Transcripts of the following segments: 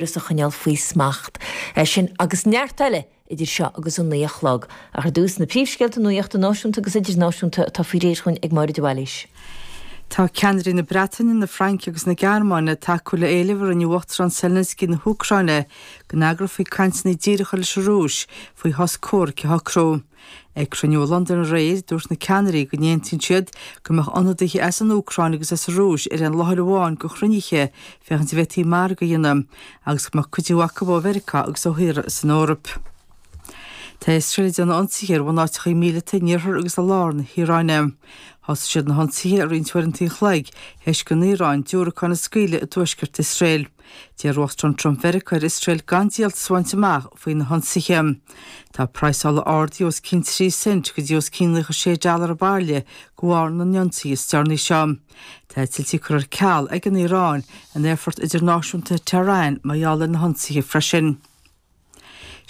Is a choinneáil faoi smacht. É sin agus neart eile idir seo agus a naoi a chlog. Ach ar dtús, na príomhscéalta nuachta náisiúnta agus idirnáisiúnta atá faoi réir againn ag Máire de Bhailís. Tá ceannairí na Breataine, na Fraince agus na Gearmáine ag tacú le héileamh a rinne Uachtarán Zelensky na hÚcráine go n-eagrófaí cainteanna díreacha leis an Rúis faoi shos comhraic a shocrú. Ag cruinniú i Londain aréir, dúirt na ceannairí go n-aontaíonn siad go mbeadh ionadaithe as an Úcráin agus as an Rúis ar aon láthair amháin do chruinnithe féachaint an bhféadfaí margadh a dhéanamh, agus go mbeadh cuidiú acu ó Mheiriceá agus ó thíortha san Eoraip. Tá Iosrael ag déanamh ionsaithe ar bhunáiteachaí míleata in iarthar agus i lár na hIaráine. Thosaigh siad na hionsaithe roinnt uaireanta an chloig tar éis don Iaráin diúracáin a scaoileadh i dtuaisceart Iosrael. D'iarr Uachtarán Trump Mheiriceá ar Iosrael gan díoltas a bhaint amach faoi na hionsaithe. Tá praghas ola ardaithe os cionn 3% go dtí os cionn 96 dollar an bhairille de bharr na n-ionsaithe is deireanaí seo. Tá eitiltí curtha ar ceal ag an Iaráin in aerfort idirnáisiúnta Tehran mar gheall ar na hionsaithe freisin.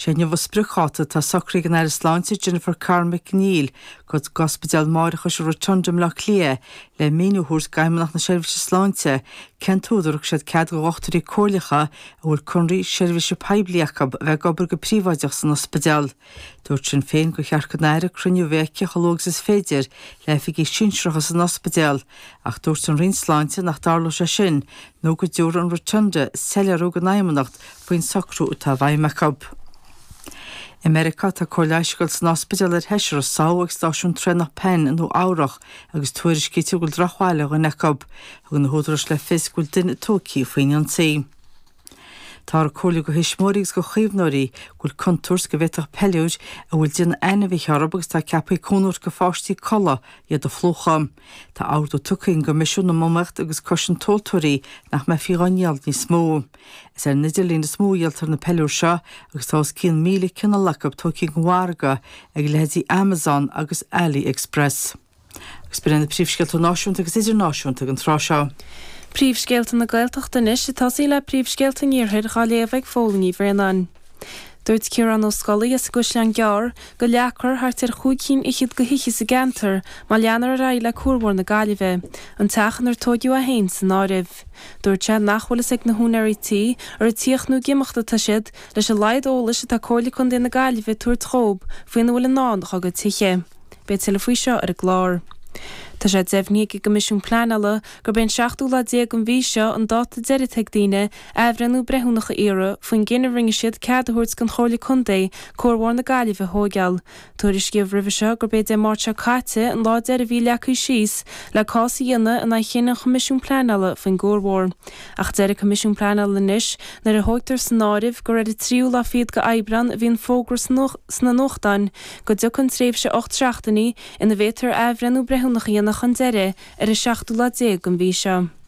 Is é inniu a spriocdháta atá socraithe ag an Aire Sláinte Jennifer Carroll MacNeill go Ospidéal máithreachais an Rotunda i mBleá Cliath le míniú a thabhairt d'Fheidhmeannacht na Seirbhíse Sláinte cén t-údar a thug siad cead do dhochtúirí comhairleacha a bhfuil conradh seirbhíse poiblí acu a bheith ag obair go príobháideach san ospidéal. Dúirt Sinn Féin gur cheart don Aire cruinniú a bheith aici chomh luath agus is féidir le hoifigigh sinsearacha san ospidéal ach dúirt an Roinn Sláinte nach dtarlódh sé sin nó go dtabharfadh an Rotunda soiléiriú don Fheidhmeannacht faoin socrú atá i bhfeidhm acu. I Meiriceá, tá cóir leighis á cur san ospidéal ar sheisear a sádh ag stáisiún traenach Penn i Nua-Eabhrac agus tuairiscítear go bhfuil drochbhail ar dhuine acu. Thug na húdaráis le fios go bhfuil duine tógthaí faoin ionsaí. Táthar ag comhairliú go thuismitheoirí agus go chaomhnóirí go bhfuil contúirt go bhféadfadh peiliúir a bhfuil déanamh ainmhithe orthu agus atá ceaptha cúnamh a thabhairt go pháistí codladh iad a phlúchadh. Tá ordú tugtha ag an gCoimisiún um Iomaíocht agus Cosaint Tomhaltóirí nach mbeifí á ndíol níos mó. Is ar an idirlíon is mó a dhíoltar na peiliúir seo agus tá os cionn 1,000 cineál acu tógtha den mhargadh ag leithéidí Amazon agus AliExpress. Agus b'in iad na príomhscéalta náisiúnta agus idirnáisiúnta ag an tráth seo. Príomhscéalta na Gaeltachta anois. Ag tosú le príomhscéalta an iarthair, dhá léamh ag Phóilín Ní Bhraonáin. Dúirt Ciarán Ó Scolaí as an gCaisleán Gearr go leagfar thart ar chúig chinn fhichead de thithe sa gceantar má leanfar ar aghaidh le cuarbhóthar na Gaillimhe, an teach inar tóigeadh é féin san áireamh. Dúirt sé nach bhfuil fhios ag na húinéirí tí ar ag tíocht nó ag imeacht atá siad, leis an laghad eolais atá Comhairle Contae na Gaillimhe ag tabhairt dhób faoina bhfuil i ndán dá gcuid tithe. Beidh tuilleadh faoi seo ar an gclár. Tá sé deimhnithe ag an gCoimisiún Pleanála gurb é an seachtú lá déag den mhí seo an dáta deiridh a bheidh ag daoine athbhreithniú breithiúnach a iarraidh faoin gcinneadh a rinne siad cead a thabhairt don Chomhairle Contae cuarbhóthar na Gaillimhe a thóigeáil. Tuairiscíodh roimhe seo gurb é Dé Máirt seo caite an lá deiridh a bhí leagtha síos le cás a dhéanamh in aghaidh chinneadh an Choimisiúin Pleanála faoin gcuarbhóthar. Ach deir an Coimisiún Pleanála anois nuair a thóigtear san áireamh gur ar an tríú lá fichead d'Aibreán a bhí an fógra sna nuachtáin go dtiocfaidh an tréimhse ocht seachtainí ina bhféadtar athbhreithniú breithiúnach a dhéanamh chun deiridh ar an seachtú lá déag den mhí seo.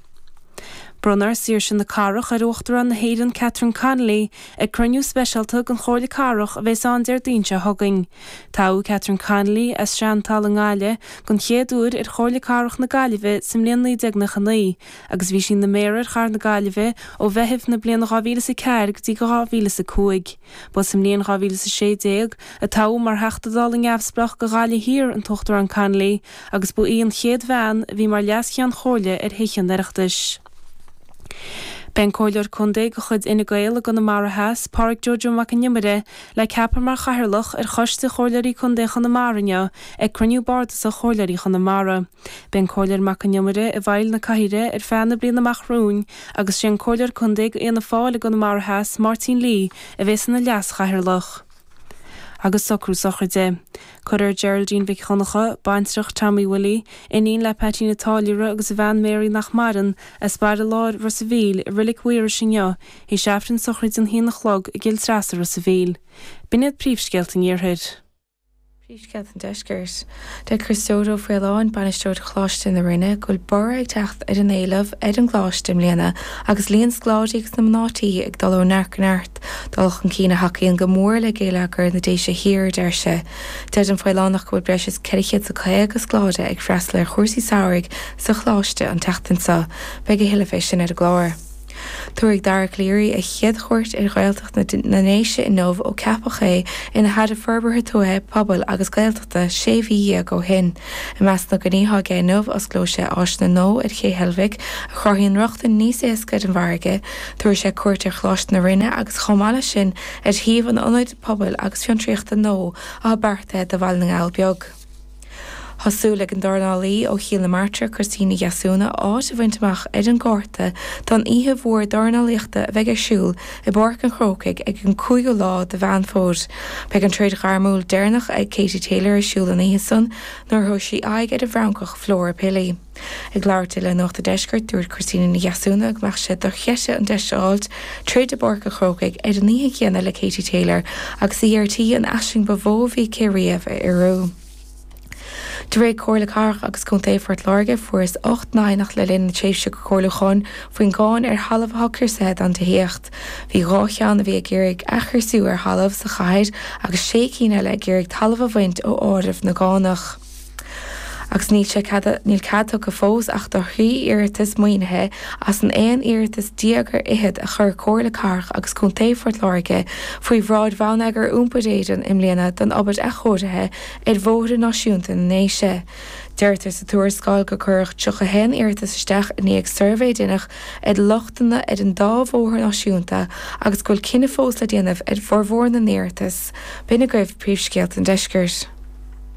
Bronnfar Saoirse na Cathrach ar Uachtarán na hÉireann Catherine Connolly ag cruinniú speisialta den Chomhairle Cathrach a bheas ann Déardaoin seo chugainn. Toghadh Catherine Connolly as Seantalamh i nGaillimh den chéad uair ar Chomhairle Cathrach na Gaillimhe sa mbliain 1999 agus bhí sí ina Méara ar Chathair na Gaillimhe ó Mheitheamh na bliana 2004 go dtí 2005. Ba sa mbliain 2016 a toghadh mar Theachta Dála Neamhspleách do Ghaillimh Thiar an tUachtarán Connolly agus ba í an chéad bhean a bhí mar Leas-Cheann Comhairle ar Thithe an Oireachtais. Beidh an Comhairleoir Contae de chuid Fhine Gael i gConamara Theas, Pádraig Jojo Mac an Iomaire, le ceapadh mar Chathaoirleach ar Choiste Chomhairleoirí Contae Chonamara inniu ag cruinniú bardasach Chomhairleoirí Chonamara. Beidh an Comhairleoir Mac an Iomaire i bhfeighil na cathaoire ar feadh na bliana amach romhainn agus is é an Comhairleoir Contae do Fhianna Fáil i gConamara Theas, Máirtín Lee, a bheas ina Leas-Chathaoirleach. Agus socrú sochraide. Cuirfear Geraldine Mhic Dhonncha, baintreach Tommy Willie, iníon le Paitín a' Táilliúra agus a bhean Mary, nach maireann, as Baile Láir Ros a' Mhíl, i Reilig Mhaorais inniu, tar éis aifreann sochraide an haon a chlog i gCill Treasa, Ros a' Mhíl. B'in iad príomhscéalta an iarthair. Príomhscéalta an Deiscirt. Deir Criostóir Ó Faoláin, Bainisteoir Choláiste na Rinne, go bhfuil borradh ag teacht ar an éileamh ar an gcoláiste i mbliana agus líon scoláirí agus na mná tí ag dul ó neart go neart, dul chun cinn a thacaíonn go mór le géilleagar na Déise Thiar, a deir sé. Deir an Faolánach go bhfuil breis is 450 scoláire ag freastal ar chúrsaí samhraidh sa choláiste an tseachtain seo. Beidh a thuilleadh fé sin ar an gclár. Tabharfaidh Dara Calleary a chéad chuairt ar Ghaeltacht na nDéise inniu ó ceapadh é ina Aire Forbartha Tuaithe, Pobail agus Gaeltachta sé mhí dhéag ó shin. I measc na gcoinní atá aige inniu, osclóidh sé áiseanna nua ar Ché Heilbhic a chruthaíonn rochtain níos éasca ar an bhfarraige, tabharfaidh sé cuairt ar Choláiste na Rinne agus chomh maith leis sin ar shuíomh an ionaid pobail agus fiontraíochta nua atá beartaithe do Bhaile na nGall Beag. Tá súil ag an dornálaí ó Chill na Martra, Christina Ní Dheasúna, áit a bhaint amach ar an gcárta don oíche mhór dornálaíochta a bheidh ar siúl i bPáirc an Chrócaigh ag an 5ú lá de Mheán Fómhair. Beidh an troid ghairmiúil deireanach ag Katie Taylor ar siúl an oíche san nuair a thabharfaidh sí aghaidh ar an bhFrancach Flora Pili. Ag labhairt di le Nuacht an Deiscirt, dúirt Christina Ní Dheasúna go mbeadh sé dochreidte an deis a fháilt troid i bPáirc an Chrócaigh ar an oíche chéanna le Katie Taylor agus í ar tí an aisling ba mhó a bhí aici riamh a fhíorú. De réir Comhairle Cathrach agus Contae Phort Láirge, fuarthas ocht n-aighneacht le linn na tréimhse comhairliúcháin faoin gcáin ar thalamh atá criosaithe don tithíocht. Bhí dhá cheann a bhí ag iarraidh athchriosú ar thalamh sa chathair agus sé cinn eile ag iarraidh talamh a bhaint ó áireamh na gcánach. Agus níl sé cead, níl cead tugtha fós ach do thrí iarratas maoinithe as an aon iarratas déag ar fhichead a chuir Comhairle Cathrach agus Contae Phort Láirge faoi bhráid Bhonneagar Iompair Éireann i mbliana don obair athchóirithe ar bhóithre náisiúnta na nDéise. Deirtear sa tuarascáil gur cuireadh 31 iarratas isteach i ndiaidh suirbhé a deineadh ar lochtanna ar an dá bhóthar náisiúnta agus go bhfuil cinneadh fós le déanamh ar bhformhór na n-iarratas. B'in agaibh príomhscéalta an deiscirt.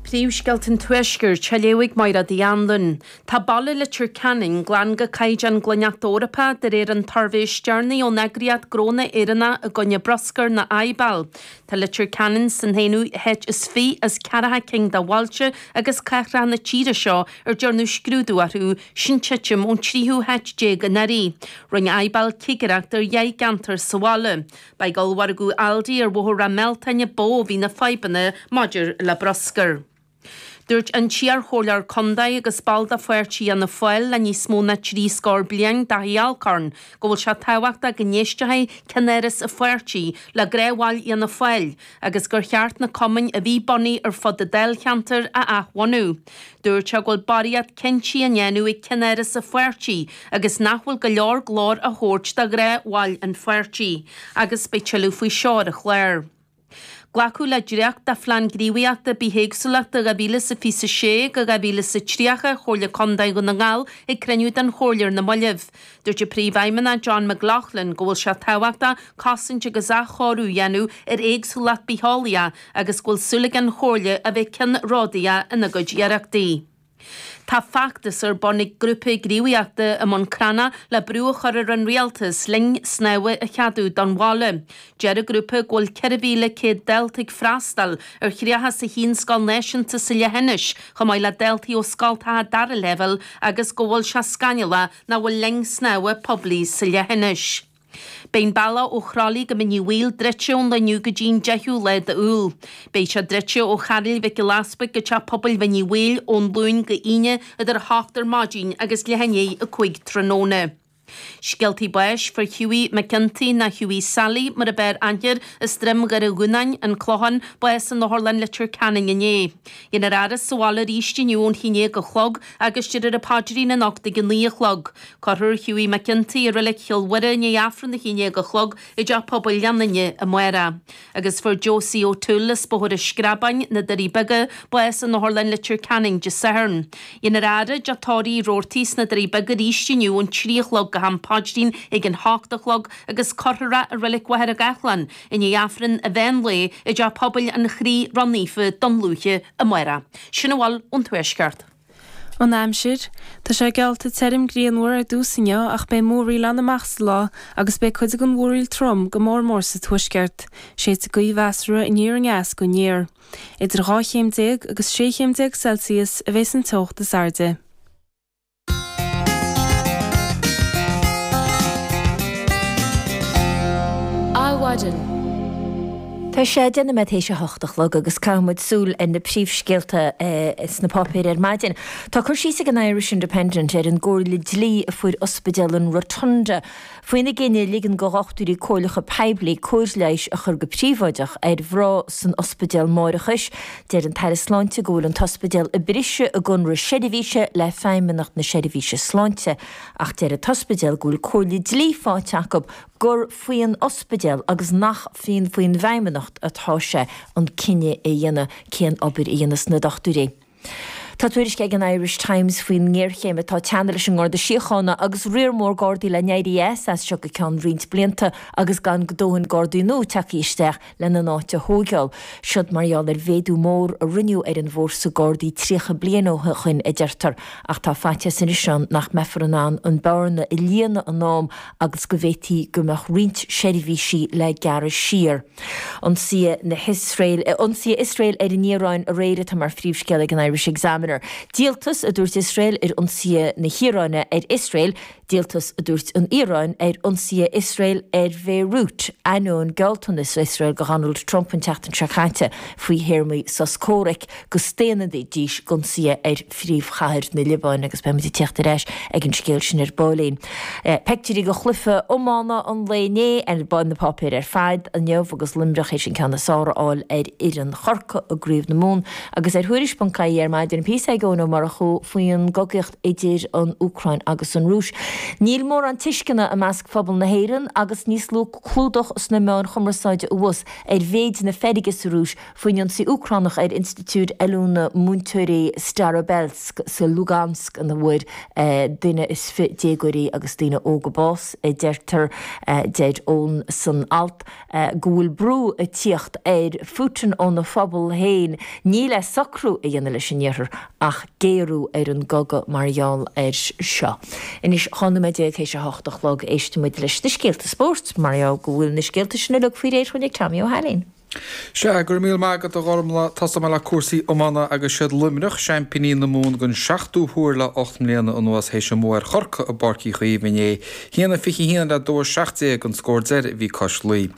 Príomhscéalta an Tuaiscirt á léamh ag Máire Ní Anluain. Tá Baile Leitir Ceanainn glan go caighdeán Glaineacht Eorpach de réir an tsuirbhé is deireanaí ón eagraíocht Gnónna Éireannach i gcoinne Bruscair nó IBAL. Tá Leitir Ceanainn san haonú háit is fiche as ceathracha cinn de bhailte agus cathracha na tíre seo ar dearnadh scrúdú orthu, sin titim ón tríú háit déag anuraidh. Rinne IBAL cigireacht ar dheich gceantar sa bhaile. Ba ag ollmhargadh Aldi ar Bhóthar Ráth Mealtain ba mhó a bhí na fadhbanna maidir le bruscar. Dúirt an t-iarchomhairleoir contae agus ball de pháirtí Fhianna Fáil le níos mó ná trí scór bliain, Dáithí Alcorn, go bhfuil sé tábhachtach go n-éistfeadh ceannáras an pháirtí le gnáthbhaill Fhianna Fáil agus gur cheart na cumainn a bhí bunaithe ar fud an dáilcheantair a athbhunú. Dúirt sé go bhfuil barraíocht cinntí á ndéanamh ag ceannáras an pháirtí agus nach bhfuil go leor glóir á thabhairt do ghnáthbhaill an pháirtí agus beidh tuilleadh faoi seo ar an chlár. Glacadh le dréacht de Phlean Gníomhaíochta Bithéagsúlachta 2026-2030 Chomhairle Contae Dhún na nGall ag cruinniú den Chomhairle ar na moillibh. Dúirt an príomhfheidhmeannach John McLaughlin go bhfuil sé tábhachtach cosaint agus athchóiriú a dhéanamh ar éagsúlacht bitheolaíoch agus go bhfuil súil ag an Chomhairle a bheith ceannródaíoch ina gcuid iarrachtaí. Tá feachtas ar bun ag grúpa gníomhaíochta i mBun Cranncha le brú a chur ar an Rialtas linn snámha a cheadú don bhaile. Deir an grúpa go bhfuil 4,100 dalta ag freastal ar thríocha is a haon scoil náisiúnta sa leithinis, chomh maith le daltaí ó scoltacha dara leibhéal agus go bhfuil sé scannalach nach bhfuil linn snámha poiblí sa leithinis. Beidh an bealach ó Chroithlí go Mín Uí Bhaoill druidte ón lá inniu go dtí an 10ú lá d'Iúil. Beidh sé druidte ó Chairéal Mhic Giolla Easpaig go Teach Pobail Mhín Uí Bhaoill ón Luan go Aoine idir 8 ar maidin agus leath i ndiaidh a 5 tráthnóna. Scéaltaí Báis fuair Hughie McGinty nó Hughie Sally mar a b'fhearr aithne air as Droim Dhoire Dhúnáin, An Clochán, bás in Otharlann Leitir Ceanainn inné. Dhéanfar é a fhaire sa bhaile arís inniu ón 11 a chlog agus déarfar an paidrín anocht ag a naoi a chlog. Cuirfear Hughie McGinty i Reilig Chill Mhuire i ndiaidh Aifreann a haon déag a chlog i dTeach Pobail Ghleann Fhinne amárach. Agus fuair Josie O'Toole, as Bóthar an Screabáin, na Doirí Beaga, bás in Otharlann Leitir Ceanainn Dé Sathairn. Déanfar é a fhaire i dteach tórraimh Roarty's sna Doirí Beaga arís inniu ón trí a chlog go ham paidrín ag an hocht a chlog agus cuirfear é i Reilig Mhachaire Gathlán i ndiaidh Aifreann an mheán lae i dTeach Pobail an Chroí Ró-Naofa Dún Lúiche amárach. Sin a bhfuil ón Tuaisceart. An aimsir, Tá sé geallta tirim grianmhar ar dtús inniu ach beidh múraíl ann amach sa lá agus beidh cuid den mhúraíl trom, go mór mór sa tuaisceart. Séidfidh gaoth mheasartha aniar aneas go aniar. Idir 12 chéim agus 16 chéim Celsius a bheidh an teocht is airde. Adhmhaidin. Tá sé deich nóiméad tar éis a hocht a chlog agus caithfidh muid súil ar na príomhscéalta sna páipéir ar maidin. Tá cur síos ag an Irish Independent ar an gcomhairle dlí a fuair Ospidéal an Rotunda Faoina gcinneadh ligean do dhochtúirí comhairleacha poiblí cóir leighis a chur go príobháideach ar mhná san ospidéal máithreachais, deir an tAire Sláinte go bhfuil an t-ospidéal ag briseadh a gconradh seirbhíse le Feidhmeannacht na Seirbhíse Sláinte ach deir an t-ospidéal go bhfuil comhairle dlí faighte acu gur faoin ospidéal agus nach faoin bhFeidhmeannacht atá sé an cinneadh a dhéanamh cén obair a dhéanfas na dochtúirí. Tá tuairisc ag an Irish Times faoin ngéarchéim atá ag teannadh leis an nGarda Síochána agus riar mór Gardaí le n-éirí as as seo go ceann roinnt blianta agus gan dóthain Gardaí nua tagtha isteach lena n-áit a thóigeáil. Siod mar gheall ar mhéadú mór a rinneadh ar an bhfórsa Gardaí 30 bliain ó shoin, a deirtear, ach tá faitíos anois ann nach mbeifear in ann an bearna a líonadh in am agus go bhféadfadh go mbeadh roinnt seirbhísí le gearradh siar. Ionsaithe na hIosrael, ionsaithe Iosrael ar an Iaráin aréir atá mar phríomhscéal ag an Irish Examiner. Díoltas a dúirt Iosrael ar ionsaithe na hIaráine ar Iosrael, Díoltas a dúirt an Iaráin ar ionsaithe Iosrael ar Bhéiriút, ainneoin gealltanas Iosrael do Dhonald Trump an tseachtain seo caite faoi théarmaí sos comhraic. go staonfaidís d'ionsaithe ar phríomhchathair na Liobáine agus beimid ag tíocht ar ais ag an scéal sin ar baillín. Peictiúirí de chluife iomána an lae inné ar na páipéir ar fad inniu agus Luimneach théis an ceann is fearr a fháil ar fhoireann Chorcai i gcraobh na Mumhan. Agus ar thuairisc.ie ar maidin tá píosa ag Eoin Ó Murchú faoin gcogaíocht idir an Úcráin agus an Rúis. Níl mórán tuisceana i measc phobal na hÉireann agus níos lú clúdach sna meáin chumarsáide abhus ar mhéid na feirge sa Rúis, Faoin ionsaí Úcránach ar institiúid oiliúna múinteoirí Starobelsk sa Lugansk ina bhfuair duine is fiche déagóirí agus daoine óga bás, deirtear, deir Eoin san alt, go bhfuil brú ag tíocht ar Phutin óna phobal féin ní le socrú a dhéanamh leis an Iarthar ach géarú ar an gcogadh mar gheall air seo. Anois dhá nóiméad déag théis a hocht a chlog éistfidh muid leis na scéalta spóirt mar gheall go bhfuil na scéalta sin uilig faoi réir dhúinn ag Tommy Ó hAilín. Sea, go raibh míle maith agat, a Ghormlaith. Tosóidh mé le cúrsaí iomána agus siad Luimneach, seaimpíní na Mumhan don seachtú huair le ocht mbliana anuas théis a mbua ar Chorcaigh i bPáirc Uí Chaoimh inné. hAon a fiche haon le dó a seacht déag an scór deiridh a bhí cois Laoi.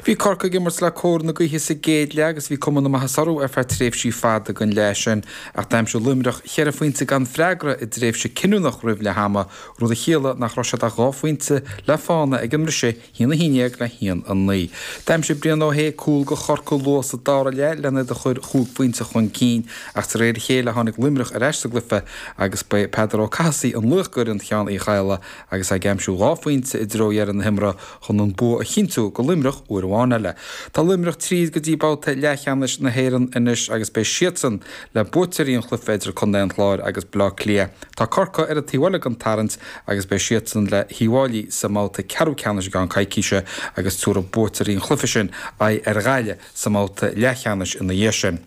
Bhí Corcaigh ag imirt le cóir na gaoithe sa gcéad leath agus bhí cuma na maitheasa orthu ar feadh tréimhsí fada den leath sin ach d'aimsigh Luimneach cheithre phointe gan freagra i dtréimhse cinniúnach roimh leath ama, rud a chiallaigh nach raibh siad ach dhá phointe le fána ag an mbriseadh. hAon a haon dhéag le haon a naoi. D'aimsigh Brian Ó hAodh cúl do Chorcaigh luath sa dara leath len iad a chur chúig phointe chun cinn ach de réir a chéile tháinig Luimneach ar ais sa gcluiche agus ba é Peadar Ó Cathasaigh an laoch d'fhoireann Sheán Uí Chadhla agus é ag aimsiú dhá phointe i dtreo dheireadh na himeartha chun an bua a chinntiú do Luimneach uair amháin eile. Tá Luimneach tríd go dtí babhta leathcheannais na hÉireann anois agus beidh siadsan le buaiteoirí an chluiche idir Contae an Chláir agus Bleá Cliath. Tá Corcaigh ar an taobh eile den tarraingt agus beidh siadsan le hUíbh Fhailí sa mbabhta ceathrú ceannais i gceann coicíse agus tabharfaidh buaiteoirí an chluiche sin aghaidh ar Ghaillimh sa mbabhta leathcheannais ina dhiaidh sin.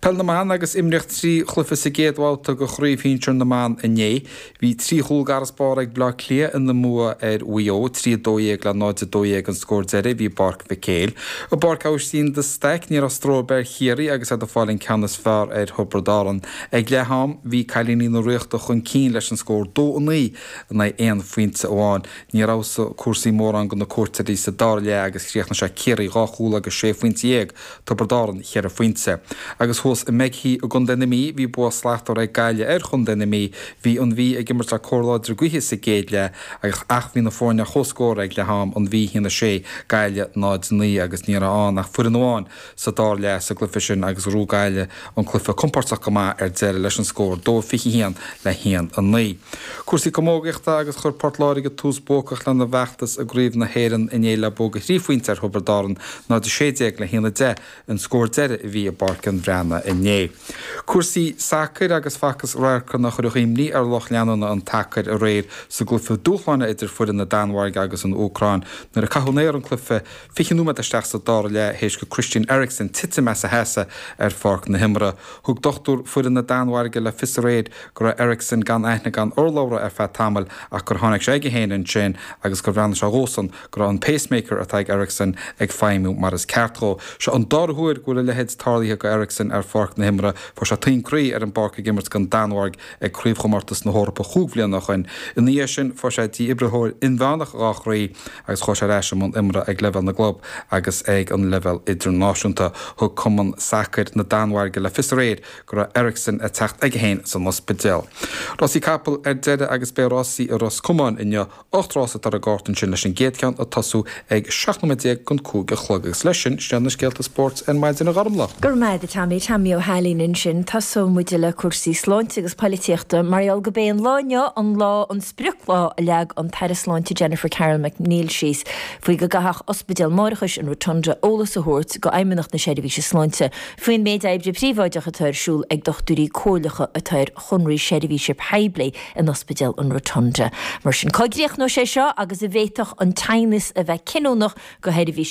Peil na mBan Agus imríodh trí chluiche sa gcéad bhabhta de Chraobh Shinsir na mBan inné, bhí trí chúl d'fharasbarr ag Bleá Cliath ina mbua ar Mhaigh Eo, 3 12 le 0 12 an scór deiridh a bhí i bPáirc Mhic Éil. I bPáirc Aibhistín de Staic, ní raibh stró ar bith ar Chiarraí agus iad ag fáil an ceann is fearr ar Thiobraid Árann, Ag leath am, bhí cailíní na Ríochta chun cinn leis an scór dó a naoi in aghaidh aon phointe amháin. Níor fheabhsaigh cúrsaí mórán do na cuairteoirí sa dara leath agus chríochnaigh sé Ciarraí dhá chúl agus sé phointe dhéag, Tiobraid Árann cheithre phointe. Agus thuas i Meghy i gContae na Mí, bhí bua slachtmhar ag Gaillimh ar Chontae na Mí. Bhí an Mhí ag imirt le cóir láidir gaoithe sa gcéad leath ach ach bhí na foirne ar chomhscór ag leath am, an Mhí haon a sé, Gaillimh náid a naoi agus ní raibh ann ach foireann amháin, sa dara leath sa gcluiche sin agus rug Gaillimh an cluiche compordach go maith ar deireadh leis an scór 2-21 le 1-9. Cúrsaí camógaíochta agus Chuir Port Láirge tús buacach lena bhfeachtas i gCraobh na hÉireann inné le bua thrí phointe ar Thiobraid Árann, 0-16 le 1-10 an scór deiridh a bhí i bPáirc an Bhreatnaigh inné. Cúrsaí sacair agus Facthas radharcanna a chuirfeadh imní ar lucht leanúna an tsacair aréir sa gcluiche dúshláin idir foireann na Danmhairge agus an Úcráin nuair a caitheadh in aer an cluiche Fiche nóiméad isteach sa dara leath théis go Christian Eriksen titim as a sheasamh ar pháirc na himeartha, thug dochtúir foireann na Danmhairge le fios aréir go raibh Eriksen gan aithne gan urlabhra ar feadh tamaill ach gur tháinig sé aige féin ansin agus gur bhreathnaigh sé dhósan go raibh an pacemaker atá ag Eriksen ag feidhmiú mar is ceart dhó. Seo an dara huair go bhfuil a leithéid tarlaithe go Eriksen ar pháirc na himeartha. Fuair sé taom croí ar an bpáirc ag imirt don Danmhairg ag craobhchomórtas na hEorpa chúig bhliana ó shin. Ina dhiaidh sin fuair sé dífhibrileoir inmheánach dhá chroí. Agus chuaigh sé ar ais i mbun imeartha ag leibhéal na gclub agus ag an leibhéal idirnáisiúnta. Thug Cumann Sacair na Danmhairge le fios aréir go raibh Eriksen ag teacht aige féin san ospidéal. Rásaí capall ar deireadh agus beidh rásaí i Ros Comáin inniu. Ocht rás atá ar an gcárta ansin leis an gcéad cheann ag tosú ag 17 nóiméad don cúig a chlog. Agus leis sin, sin iad na scéalta spóirt ar maidin a Ghormfhlaith. Go raibh maith agat Tommy, Tommy Ó hAilín ansin. Tosóidh muid le cúrsaí sláinte agus poilitíochta mar gheall gurb é an lá inniu an lá an. sprioclá a leag an tAire Sláinte Jennifer Carroll MacNeill síos faoi go gcaithfeadh ospidéal máithreachais an Rotunda eolas a thabhairt go Fheidhmeannacht na Seirbhíse Sláinte faoin méid oibre príobháideach atá ar siúl ag dochtúirí comhairleacha atá ar chonraí seirbhíse poiblí in Ospidéal an Rotunda. Mar sin, cá gcríochnóidh sé seo agus an bhféadfadh an t-aighneas a bheith cinniúnach go sheirbhísí.